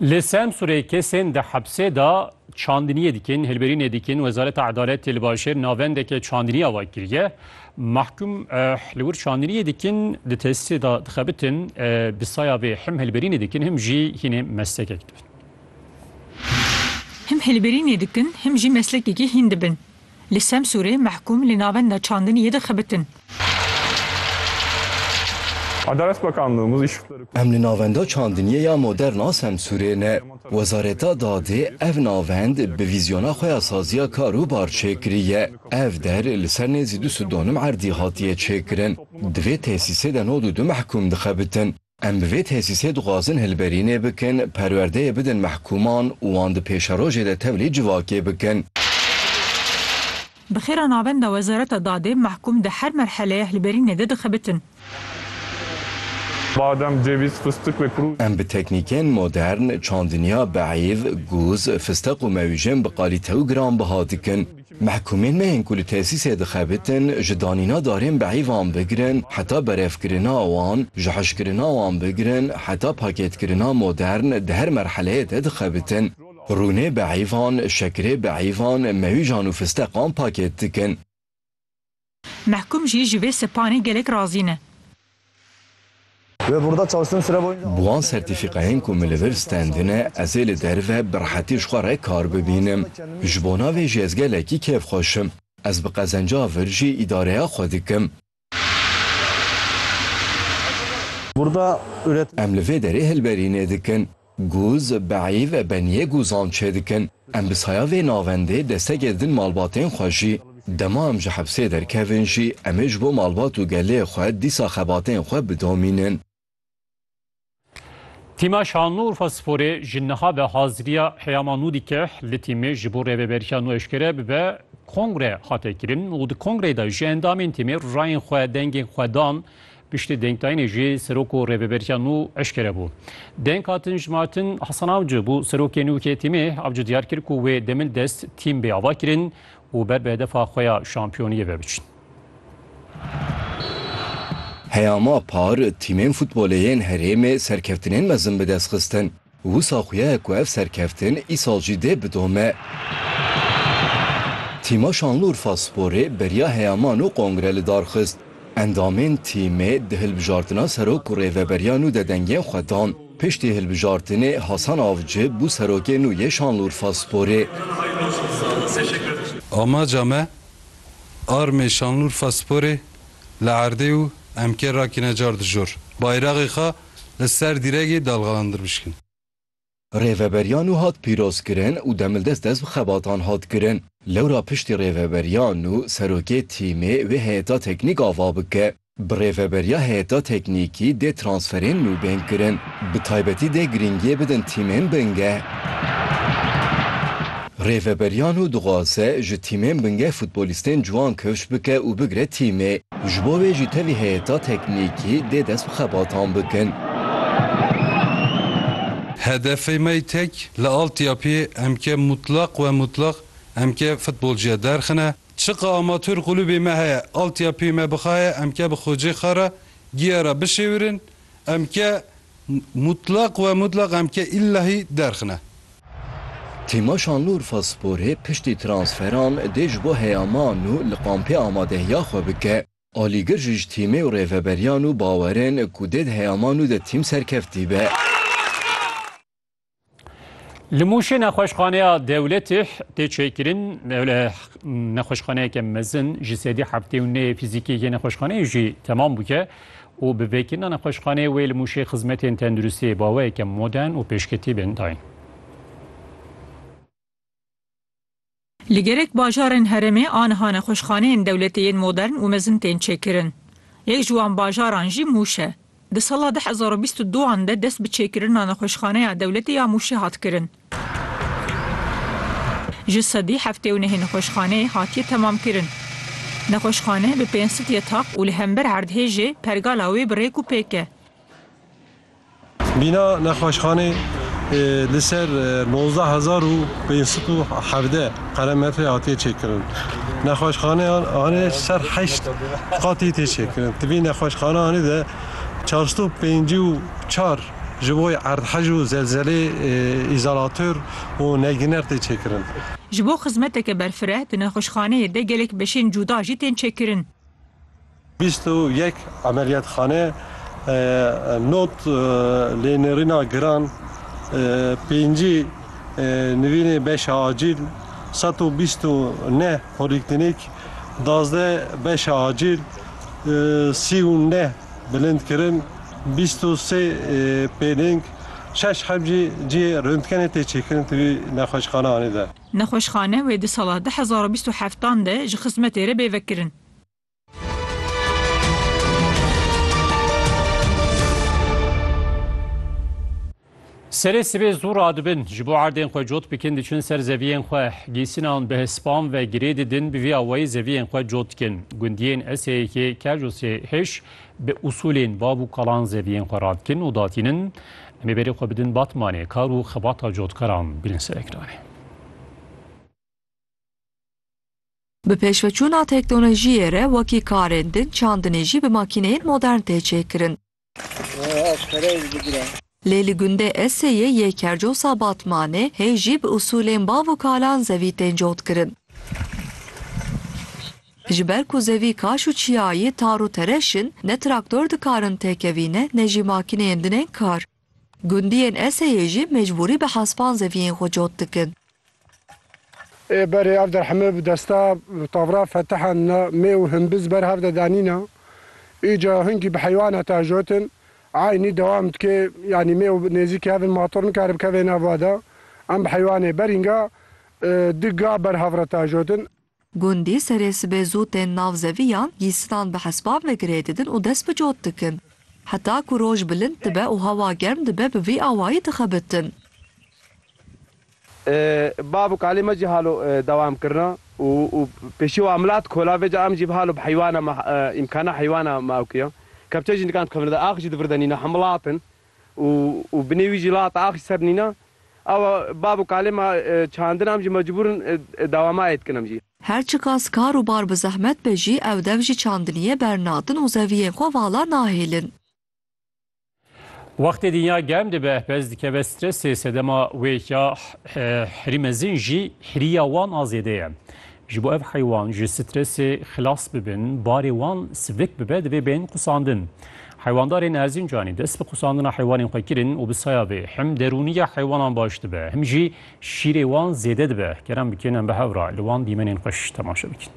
Li Semsûrê kesên di hepsê de çandiniyê dikin, hilberînê dikin. Wezareta Edaletê li bajêr navendeke çandinî ava kiriye. Mahkum li wir çandiniyê dikin, di tesîsê de dixebitin. Bi saya vê him hilberînê dikin, him jî hînê mestekek dibin. Him hilberînê dikin, him jî meslekekî hîn dibin. Li Semsûrê mehkûm li navenda çandinî yê dixebitin. Adalet Bakanlığı muz işıkları kurdu. Em li navenda çandiniyê ya modern a Semsûrê ne. Wezareta Dadê ev navend bi vîzyona xwe ya saziya kar û bar çêkiriye. Ev der li ser nêzî du sidonim erdî hatiye çêkirin. Di vê tesîsê de nod û du mehkûm dixebitin. Em bi vê tesîsê dixwazin hilberînê bikin, perwerdeyê bidin mehkûman û wan di pêşerojê de tevlî civakê bikin. Bi xêra navenda Wezareta Dadê mehkûm di her merheleya hilberînê de dixebitin. Badem, cevîz, fistik ve kurû. Em bi teknîkên modern, çandiniya beîv, gûz, fisteq û mewîjên bi qalîte û giranbiha dikin. Mehkumên me yên ku li tesîsê dixebitin ji danîna darên bi heyvan bigirin heta berevkirina wan, ji hişkirina wan bigirin heta pakêtkirina modern di her merheleyê de dixebitin. Rûnê bi heyvan, şekirê bi heyvan, mewîjan û fisteqan pakêt dikin. Mehkûm jî ji vê sepanê gelek razî ne. Bi wan sertîfîkayên ku min li vir stendine ez ê li derve bi rehetî ji xwe re kar bibînim. Ji bo navê jî ez gelekî kêf xweş im. Ez bi qezenca vir jî îdareya xwe dikim. Em li vê derê hilberînê dikin. Gûz, Beî ve benîyê gûzan çêdikin. Em bi saya vê navendê destegê didin malbatên xwe jî. Dema em ji hepsê derkevin jî em ê ji bo malbat û gelê xwe dîsa xebatên xwe bidomînin. Tîma Şanlıurfa Sporê ji niha ve hazirîya Heyama nû dike. Li tîmê ji bo rêveberiya nû eşkere bibe kongre hate kirin û di kongreyê de ji endamên tîmê rayên xwe, dengên xwe dan. Piştî dengdayînê jî serok û rêveberîya nû eşkere bû. Deng hatin jmartin, Hasan Avcı bû serokê nû KTM'ê. Avcı diyar kir ku wê demil dest tîm bê avakirin û ber bi hedefa xwe ya şampiyoniyê ve biçin. Heyama par tîmên futbolê yên herêmê serkeftinên mezin bi dest xistin. Wisa xuya ye ku ev serkeftin îsal jî dê bidome. Tîma Şanlurfa Sporê beriya heyaman û kongre li dar xist. Endamên tîmê di hilbijartina serok û rêveberiya nû de dengên xwe dan. Piştî hilbijartinê Hasan Avci bû serokê nû yê Şanlurfa Sporê. Amaca me armê Şanlurfa Sporê li erdê û emkê rakine car di jor. Bayraxê xwe. li ser dîregê dalxalandir bişkin. Rêveberiyan û hat pîrozkirin û demildest dest bi xebatan hat kirin. Lewra piştî rêveberiyan û serokê tîmê wê heyeta teknîk ava bike. Bi rêveberiya heyeta teknîkî dê transferên nû bên kirin. Bi taybetî dê girîngiyê bidin tîmên bingeh. Rêveberiano dixwaze ji tîmên bingeh futbolîstên ciwan kewş bike û bigre tîmê. Ji bo wê jî tevî heyeta teknîkî dê dest bi xebatan bikin. Hedefê me tek li altyapiyê emke mutlaq we mutlaq emke futbolciya derxine. Çiqa amatûr qulûbê me heye altyapiyê me bixaye emke bi xocê xwe re giya re bişêwirin. Em ke mutlak we mutlak em ke îllahî derxine. Tîma Şanlıurfa Sporê piştî transferan dê ji bo heyaman û li kampê amadehiya xwe bike. Alîgir jî ji tîmê û rêveberiyan û bawerên ku dê di heyaman û di tîm serkeftî be. Li Mûşê nexweşxaneya dewletê tê çêkirin nexweşxaneyeke mezin ji sedî heftê û neyê fîzîkê yê nexweşxaneyê jî temam bûye û bi vêkirina nexweşxaneyê wê li Mûşê xizmetên tenduristiyê baweyeke modern û pêşketî bên dayîn. Li gerek bajarên herêmê aniha nexweşxaneyên dewletê yên modern û mezin tên çêkirin. Yek ji wan bajaran jî Mûş e. Di sala du hezar û bîst û du an de dest bi çêkirina nexweşxaneya dewletê ya Mûşê hat kirin. Ji sedî heftê û nehê nexweşxaneyê hatiye temamkirin. Nexweşxane bi pênc sed yetaq û li hember erdhêjê pergala wê bi rêk û pêk e. Bîna nexweşxanê li ser nozda hezar û pênc sed û hevdeh qeremetrê hatiye çêkirin. Nexweşxaneyan anê ser heşt qatî tê çêkirin. Di vî nexweşxaneyanê de çar sed û pêncî û çar ji bo erdhej û zelzelê îzolatör û negîner tê çêkirin. Ji bo xizmeteke berfireh di nexweşxaneyê de gelek beşên cuda jî tên çêkirin. Bîst û yek emeliyatxane not lê nêrîna giran, pêncî nivînê beşa acîl, sed û bîst û neh polîklînîk, dazdeh beşa acîl, sî û neh bilindkirin, bîst û sê pêlêng, şeş heb jî cihê röntgenê tê çêkirin di vî nexweşxaneanê de. Nexweşxane wê di sala du hezar û bîst û heftan de ji xizmetê re bê vekirin. Serê sibê zû radibin ji bo erdên xwe cot bikin diçin ser zeviyên xwe gîsinan bi hespan ve girê didin bi vî awayî zeviyên xwe cot dikin gundiyên eseyekê kej û sê hêş bi usulên bav û kalan zeviyên xwe radikin û datînin em ê berê xwe bidin batmanê kar û xebata cotkaran bînin serekranê. Bi pêşveçûna teknolojiyê re wekî karên din çandinê jî bi makîneyên modern tê çêkirin. Lê li gundê Eseyê yê Kercosa Batmanê hê jî bi usûlên bav û kalan zevî tên cotkirin. Ji ber ku zevî kaş û çiyayî tar û tereş in, ne traktor dikarin têkevîne ne jî makîneyên din ên kar. Gundiyên Eseyê jî mecbûrî bi hespan zeviyên xwe cot dikin. Ê berê ev derhemê bi desta tavra fetihan na mê û himbiz ber hev de danîna. Îca hinkî bi heywana ta jotin. Eynî dewam dike yanî mê û nêzîkê hev in mator nikare bikeve nav va de. Em bi heywanê berînga di ga ber hev re ta jotin. Gundî serê sibê zû tên nav zeviyan, gîysinan bi hespan ve girê didin û dest bi cot dikin. Heta ku roj bilind dibe û hewa germ dibe bi vî awayî dixebitin. Bav û kalê me jî halo dewam kirina û pêşî wan milat kola vê ca em jî bi halo bi heywana me îmkana heywana me ew kiya. Kepçe jî nikan dixebitin. Ax jî di vir de nîne hemû lat in. û û binê wî jî la heta axîr ser nîna. Awa bab û kalê ma çandin am jî mecbûr in dewamayê dikin em jî. Her çiqas kar û bar bi zehmet be jî ew dev jî çandiniyê bernatin û zeviyên xwe vala nahêlin. Wextê dinya germ dibe, pez dikeve stresê, sedema wê ya hirî mezin jî hirîya wan a zêde ye. Ji bo ev heywan ji stresê xilas bibin, barê wan sivik bibe divê bên qusandin. Heywandarên Erzincanê dest bi qusandina heywanên xwe kirin û bi saya vê him derûniya heywanan baş dibe, him jî şîrê wan zêde dibe. Geran bikên em bi hev re li wan dîmenên xweş temaşe bikin.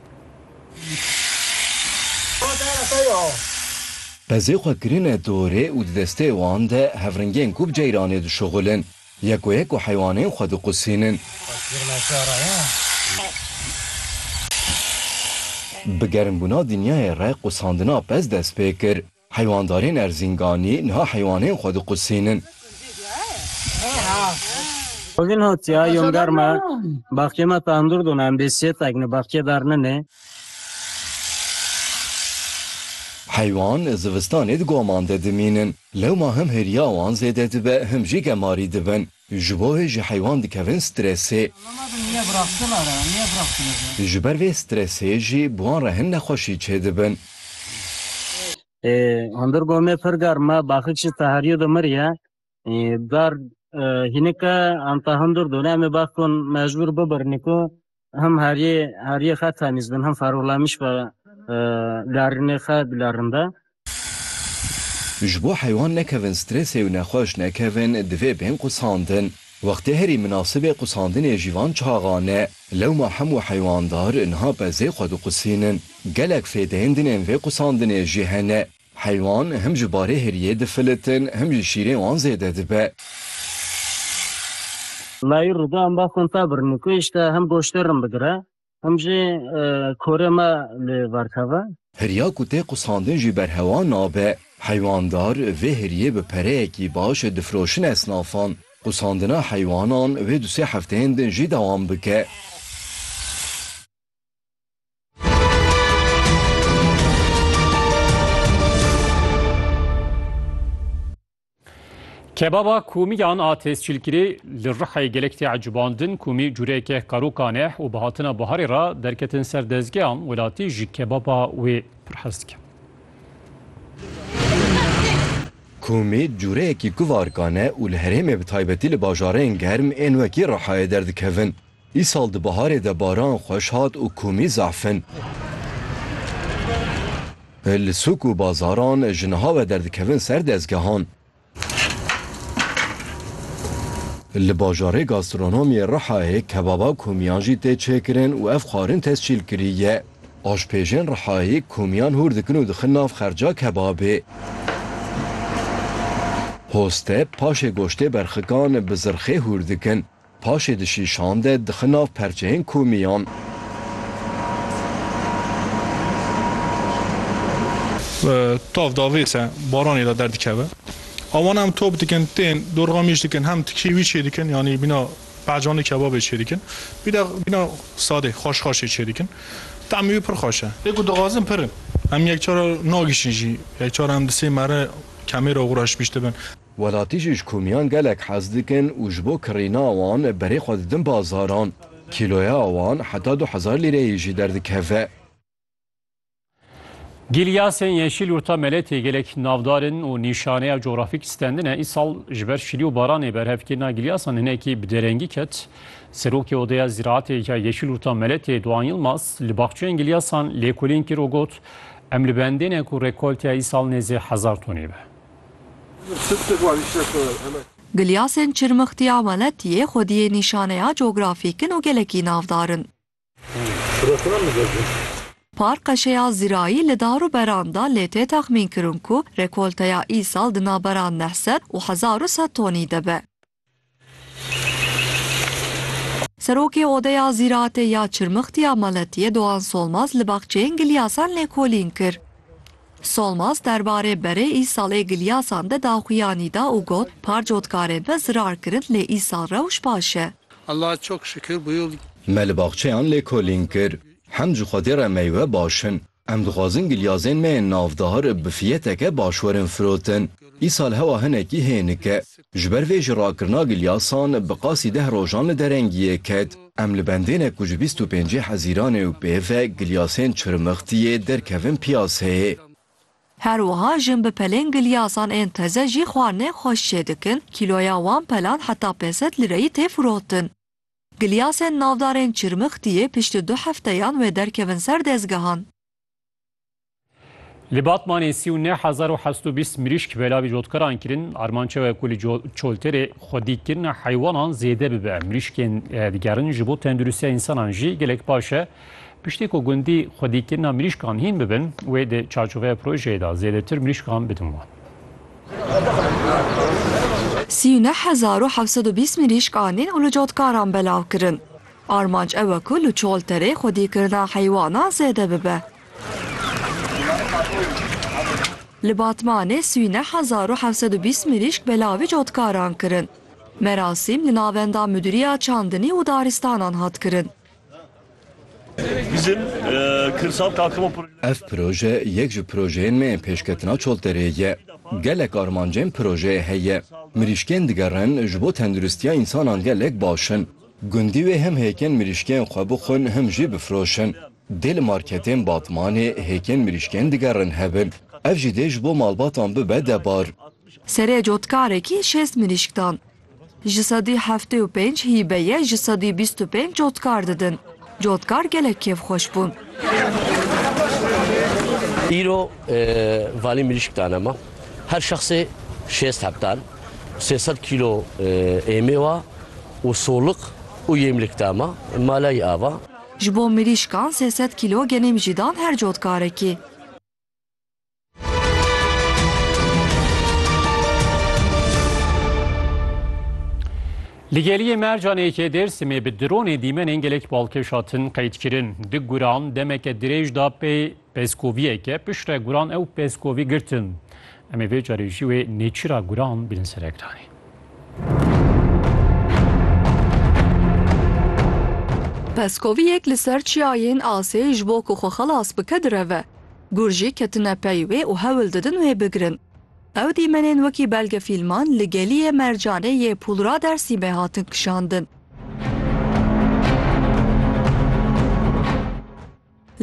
Pezê xwe kirine dorê û di destê wan de hevringên ku bi ceyranê dişuxulin. Yeko yeko heywanên xwe diqusînin. Bi germbûna dinyayê re qusandina pez dest pê kir. Heywandarên Erzînganî niha heywanên xwe diqusînin. Bugün hotya yom garma baxçê me tandur dona em bê sê tekni baxçê dar ninê. Heywan zivistanê di goman de dimînin. Lewma him hêriya wan zêde dibe him jî gemarî dibin. Ji bo hê jî heywan dikevin stresê. Ji ber vê stresê jî bi wan re hin nexweşî çêdibin. Hundir gomê pir germ e, baxik jî teherî dimir ye. Gar hînike em ta hundir dûn. Em ê baxikon mecbûr bibirnî ku Hem heriyê heriyê xwe temîz bin, hem ferûlemiş be larinê xwe bilarin be. Ji bo heywan nekevin strêsê û nexweş nekevin divê bên qusandin. Wextê herî minasibê qusandinê jî van çaxan e. Lewma hemû heywandar niha bezê xwe diqusînin. Gelek fêdeyên din ên vê qusandinê jî hene. Heywan him ji barê heriyê difilitin him jî şîrê wan zêde dibe. Layî rûda em ba xwe ta bir nûkeyîş de him goştê rin bigire him jî korê me li ver keve. Heriya ku tê qusandin jî berhewa nabe. Heywandar vê heriyê bi pereyekî baş difiroşin esnafan. Qusandina heywanan vê du sê hefteyên din jî dewam bike. Kebaba komî yan a tescîlkirî li Rihayê gelek tê ecibandin komî cûreyeke karokan e û bi hatina biharê re derketin ser dezgehan welatî ji kebaba wê pir hez dikin. Komî cûreyekî kuvarkan e û li herêmê bi taybetî li bajarên germ ên wekî Rihayê derdikevin. Îsal di biharê de baran xweş hat û komî zafin. Li sûk û bazaran ji niha ve derdikevin ser dezgehan. Li bajarê gastronomiyê Rihayê kebaba komiyan jî tê çêkirin û ev xwarin tescîl kirî ye. Aşpêjên Rihayê komiyan hûr dikin û dixin nav xerca kebabê. Hoste paşê goştê berxikan bi zirxê hûr dikin. Paşê dişî şande dixin nav perçeyên komiyan. Tav da vêse baranê da derdikeve. Awan hem top dikin, tên, dorxa mîş dikin, hem tikî wî çêdikin, yanî bîna pehcanê kebabê çêdikin. Wî de bîna sadê, xweş xweşê çêdikin. Temî wî pir xweş e. Lê ku dixwazin pir in. Em yekcar nagişin jî. Yekcar em di sê mere kemêra xwe re şibîştibin. Welatî jî ji komiyan gelek hez dikin û ji bo kirîna wan berê xwe didin bazaran. Kîloya wan heta du hezar lîreyê jî derdikeve. Gîlyasên yeşîl Urta Meletê gelek navdar in û nîşaneya cografîk stendin e. Îsal ji ber şilî û baranê berhevkirina gîlyasan hinekî bi derengî ket. Serokê Odeya Zîraetê ya Yeşîl Urta Meletê Doğan Yılmaz li baxçeyên gîlyasan lêkolîn kir û got, Em li bendê ne ku rekolteya îsal nêzê hezar tonê be. Gilyasên çirmixtî ya weletiyê xwediyê nîşaneya cografîk in û gelekî navdar in. Park qeşeya zirayî li dar û beran de lê tê texmînkirin ku rekolteya îsal di navbera neh sed û hezar û sed tonî de be. Serokê Odeya Zîratê ya Çirmixtî ya Maletiyê Doğan Solmaz li baxçeyên gilyasan lêkolîn kir. Solmaz derbarê berê îsal ê gilyasan de daxuyanî da û got, Par cotkarê me zirar kirin lê îsal rewş baş e. Allaha çok şükür bu yıl. Me li baxçeyan lêkolîn kir. Hem ji Xwedê re meywe baş in. Em dixwazin gilyazên me yên navdar bi fiyeteke baş werin firotin. Îsal hewa hinekî hênik e. Ji ber vê jî rakirina gilyasan bi qasî deh rojan li derengiyê ket. Em li bendêne ku ji bîst û pêncî hezîranê û pê ve gilyasên çirmixtiyê derkevin piyaseyê. Her wiha jin bi pelên gilyasan ên teze jî xwarinên xweş çêdikin, kîloya wan pelan heta pênc sed lireyî tê firotin. Gilyasên navdarên Çirmixtiyê piştî du hefteyan wê derkevin ser dezgehan. Li Batmanê sî û neh hezar û heşt û bîst mirîşk belavî cotkaran kirin. Armanca we ku li çolterê xwedîkirina heywanan zêde bibe. Mirîşkên digerin ji bo tenduristiya însanan jî gelek baş e. Piştî ku gundî xwedîkirina mirîşkan hîn bibin, wê di çarçoveya projeyê de zêdetir mirîşkan bidin wan. Sî û neh hezar û heft sed û bîst mirîşk anîn û li cotkaran belav kirin. Armanc ew e ku li Çolterê xwedîkirina heywanan zêde bibe. Li Batmanê sî û neh hezar û heft sed û bîst mirîşk belavî cotkaran kirin. Merasîm li navenda Mudîriya Çandinî û Daristanan hat kirin. Ev proje yek ji projeyên me yên pêşketina Çolterê ye. Gelek armancên projeyê heye. Mirîşkên digerin ji bo tenduristiya însanan gelek baş in. Gundî wê hem hêkên mirîşkên xwe bixwin him jî bifroşin. Dê li marketên Batmanê hêkên mirîşkên digerin hebin. Ev jî dê ji bo malbatan bibe debar. Serê cotkarekî şêst mirîşk dan. Ji sedî heftê û pênc hîbe ye ji sedî bîst û pênc cotkar didin. Cotkar gelek kêfxweş bûn. Îro valî mirîşk dane me. Her şexsê şêst heptal, sê sed kîlo ê mêwa û solik û yêmlik da me. Maleyî ava. Ji bo mirîşkan sê sed kîlo genêm jî dan her cotkarekî. Li geliyê mercanekê Dêrsimê bi dronê dîmenên gelek balkêş hatin qeydkirin. Di guran demeke dirêj da pê peskoviyeke piştre guran ew peskovî girtin. Em ê vê carê jî wê nêçîra guran bînin ser ekranê. Peskoviyek li ser çiyayên asê ji bo ku xwe xelas bike direve. Gur jî ketine pey wê û hewl didin wê bigirin. Ew dîmenên wekî belgefîlman li Geliyê Mercanê yê Pulra Dersîmê hatin kişandin.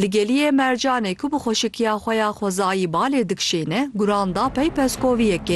Li Geliyê Mercanê ku bi xweşikiya xwe ya xwezayî balê dikişîne, guran da pey peskoviyekê.